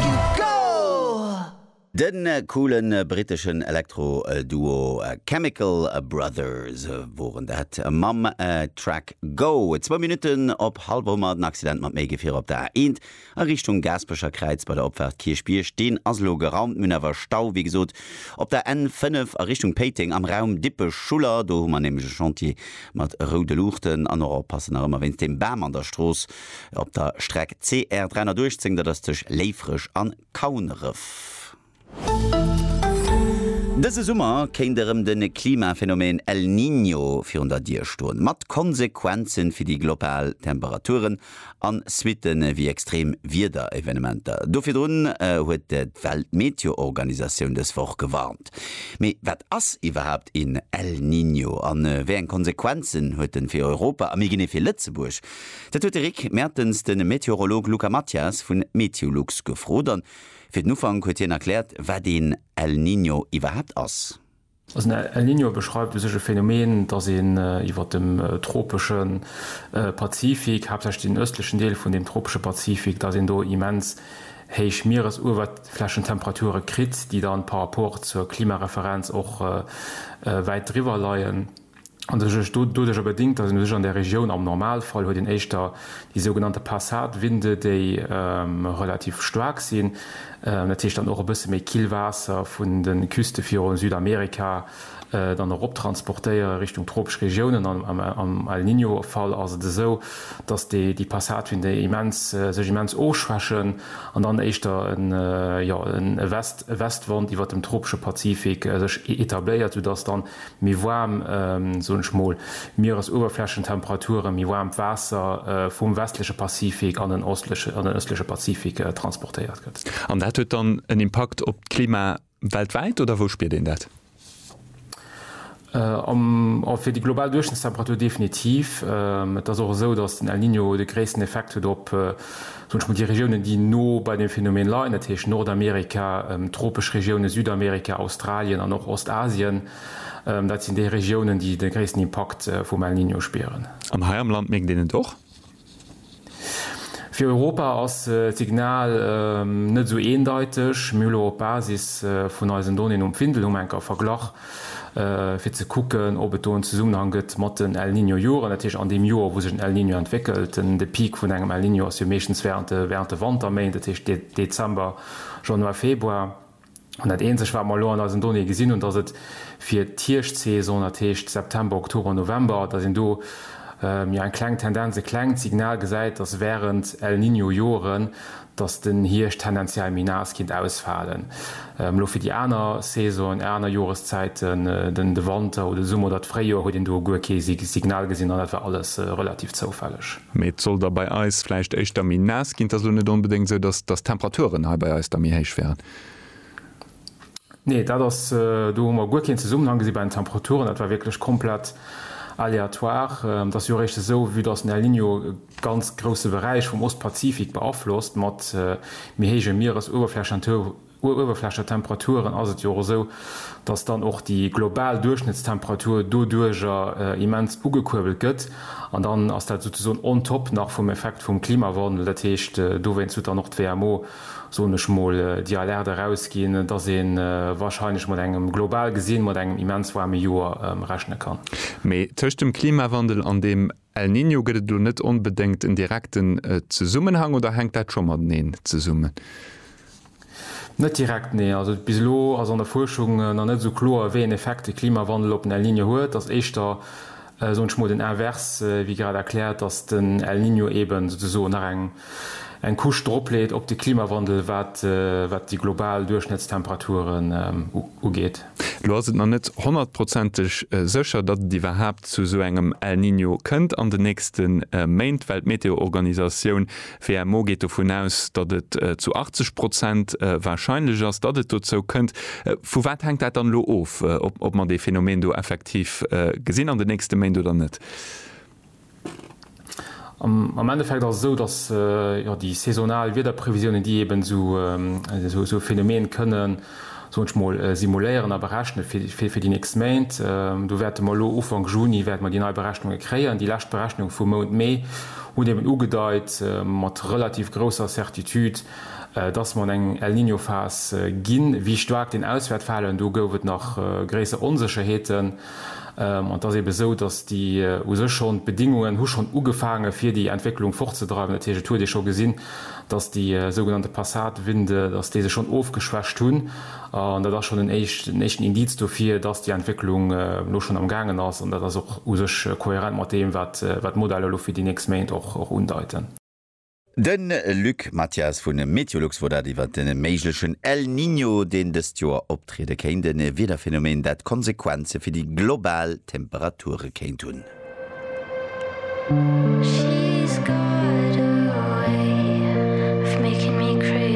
Du Goal! De coole britteschen Elektro-Duo Chemical Brothers woren dat mam Track Go. Zwou Minutten op Halboumer, den Accident mat méi Gefierer op der A1 a Richtung Gaaspecher Kräiz bei der Opfaart Kierchbierg, deen ass elo geraumt. Mir hunn awer Stau, wéi gesot, op der N5 a Richtung Péiteng am Raum Dippech-Schuller. Do hu mer nämlech e Chantier mat roude Luuchten an och oppassen nach ëmmer wéinst dem Bam an der Strooss. Op der Streck CR 318, dat ass tëscht Léifreg an Kauneref. Dëse Summer kéint erëm de Klimaphenomeen El Niño virun der Dier stoen, mat Konsequenzen fir déi global Temperaturen a Suitte wéi extrem Wiederevenementer. Do virdrun huet d'Weltmeteoorganisatioun dës Woch gewarnt. Mee wat ass iwwerhaapt een El Niño a wéi eng Konsequenzen huet en fir Europa a méi genee fir Lëtzebuerg? Dat huet de Rick Mertens de Meteorolog Luca Mathias vun Meteolux gefrot an fir den Ufank huet hien erkläert wat een El Niño iwwerhaapt ass. Also en El Niño beschreift u sech e Phänomen, datt een iwwer dem tropesche Pazifik, haaptsächlech den ëstlechen Deel vun deem tropesche Pazifik, datt een do immens héich Mieresuewerflächentemperature kritt, déi dann par rapport zur Klimareferenz och wäit driwwer leien. an sech ech doduercher bedingt, dass een u sech an där Regioun, am Normalfall huet een éischter déi sougenannte Passatwinde, déi relativ staark sinn, dat heescht dann och e bësse méi Killwaasser vun de Küste virun Südamerika dann erop transportéiere Richtung tropesch Regiounen. An am El Niño-Fall ass et esou, dass déi Passatwinde immens sech immens ofschwächen an dann éischter en, jo, e West, e Westwand iwwert dem tropesche Pazifik sech etabléiert, soudass dann méi waarm, soen ech mol, Mieresuewerflächentemperaturen, méi waarmt Waasser vum westleche Pazifik an den ëstleche Pazifik transportéiert gëtt. An dat huet dann en Impakt op d'Klima weltwäit, oder wou spiert een dat? Fir déi global Duerchschnëttstemperatur definitiv. Et ass och esou, datt den El Niño de gréissten Effekt huet op. Wënsche mer déi Regiounen, déi no bei deem Phänomen leien, dat heescht Nordamerika, tropesch Regiounen, Südamerika, Australien an och Ostasien, dat sinn déi Regiounen, déi de gréissten Impakt vum El Niño spieren. An hei am Land mierkt een et och. Fir Europa ass d'Signal net esou eendeiteg. Mir hu lo op Basis vun eisen Donnéeën um Findel, hu mer eng Kéier verglach, fir ze kucken, ob et do en Zesummenhang gëtt mat den El Niño Joren, dat heescht an deem Joer, wou sech en El Niño entwéckelt. De Peak vun engem El Niño ass jo meeschtens während de während de Wanterméint, dat heescht Dezember, Januar, Februar. An dat eenzegt, wat mer elo an eisen Donnéeë gesinn hunn, dass et fir d'Hierschtsaison, dat heescht September, Oktober, November, dass een do jo eng kleng Tendenz, e klengt Signal gesäit, dass während El Niño Joren, dass den Hierscht tendenziell méi naass kinnt ausfalen, elo fir déi aner Saisonen, aner Joreszäiten, den de Wanter oder de Summer oder d'Fréijoer, huet een do guer kee Signal gesinn an dat war alles relativ zoufälleg. Mee et soll da bei eis vläicht éischter méi naass ginn. Et ass elo net onbedéngt esou, dass d'Temperaturen hei bei eis da méi héich wären. Nee, dat ass, do hu mer guer keen Zesummenhang gesi bei den Temperaturen. Dat war wierklech komplett aléatoire. Et ass jo eréischt esou, vue dass den El Niño e ganz grousse Beräich vum Ostpazifik beaflosst, mat méi héije Mieresuewerflächentemperaturen, ass et jo och esou, dass dann och déi global Duerchschnëttstemperatur doduerjer immens ugekuerbelt gëtt. An dann ass dat souzesoen on top nach vum Effekt vum Klimawandel. Dat heescht, dowéinst huet dann och d'WMO soen ech mol, déi Alerte erausginn, dass ee warscheinlech mat engem, global gesinn, mat engem immens waarme Joer rechne kann. Mee tëscht dem Klimawandel an dem El Niño gëtt et elo net onbedéngt en direkten Zesummenhang, oder hänkt dat scho mateneen zesummen? Net direkt, nee. Also bis elo ass an der Fuerschung nach net esou kloer, wéi een Effekt de Klimawandel op den El Niño huet. Ass éischter soen ech mol den Invers, wéi grad erkläert, dass den El Niño eben souzesoen nach eng eng Couche dropleet op de Klimawandel, wat wat déi global Duerchschnëttstemperaturen ugeet. Elo ass et nach net honnertprozenteg sécher, datt et iwwerhaapt zu esou engem El Niño kënnt an den nächste Méint, well d'Meteoorganisatioun D'WMO geet dovun aus, datt et zu 80 Prozent warscheinlech ass, datt et dozou kënnt. Vu wat hänkt dat dann elo of, ob mer dee Phänomen do effektiv gesinn an den nächste Méint oder net? Am Endeffekt ass et esou, datt déi saisonal Wiederprevisiounen, déi eeben esou e Phänomen kënnen, soen ech mol, simuléieren a berechne fir fir déi nächst Méint. Do wäerte mer elo Ufank Juni wäerte mer déi nei Berechnunge kréien. Déi lescht Berechnunge vum Mount Mee hunn eben ugedeit mat relativ grousser Certitude, dass mer an eng El-Niño-Phas ginn. Wéi staark deen Auswäert falen, do gouf et nach gréisser Onsécherheeten. An et ass ebe esou, datt déi u sech schonn, d'Bedingungen hu schonn ugefaange fir déi Entwécklung fortzedreiwen. Dat heescht, et huet ee scho gesinn, datt déi sougenannte Passatwinde, datt déi sech schonn ofgeschwächt hunn. An dat ass schonn en éischten Indiz dofir, datt déi Entwécklung elo schonn am Gaangen ass. An dat ass och u sech kohärent mat deem, wat d'Modeller elo fir déi nächst Méint och undeiten. De Luc Mathias vu Meteolux wor dat iwwert de méiglechen El Niño, deen dëst Joer optriede kéint. E Wiederphänomen, dat Konsequenze fir déi global Temperature kéint hunn.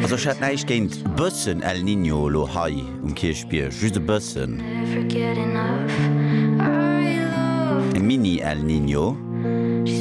Also ech hätt näischt géint bëssen El Niño elo hei um Kierchbierg, just e bëssen. E Mini-El Niño.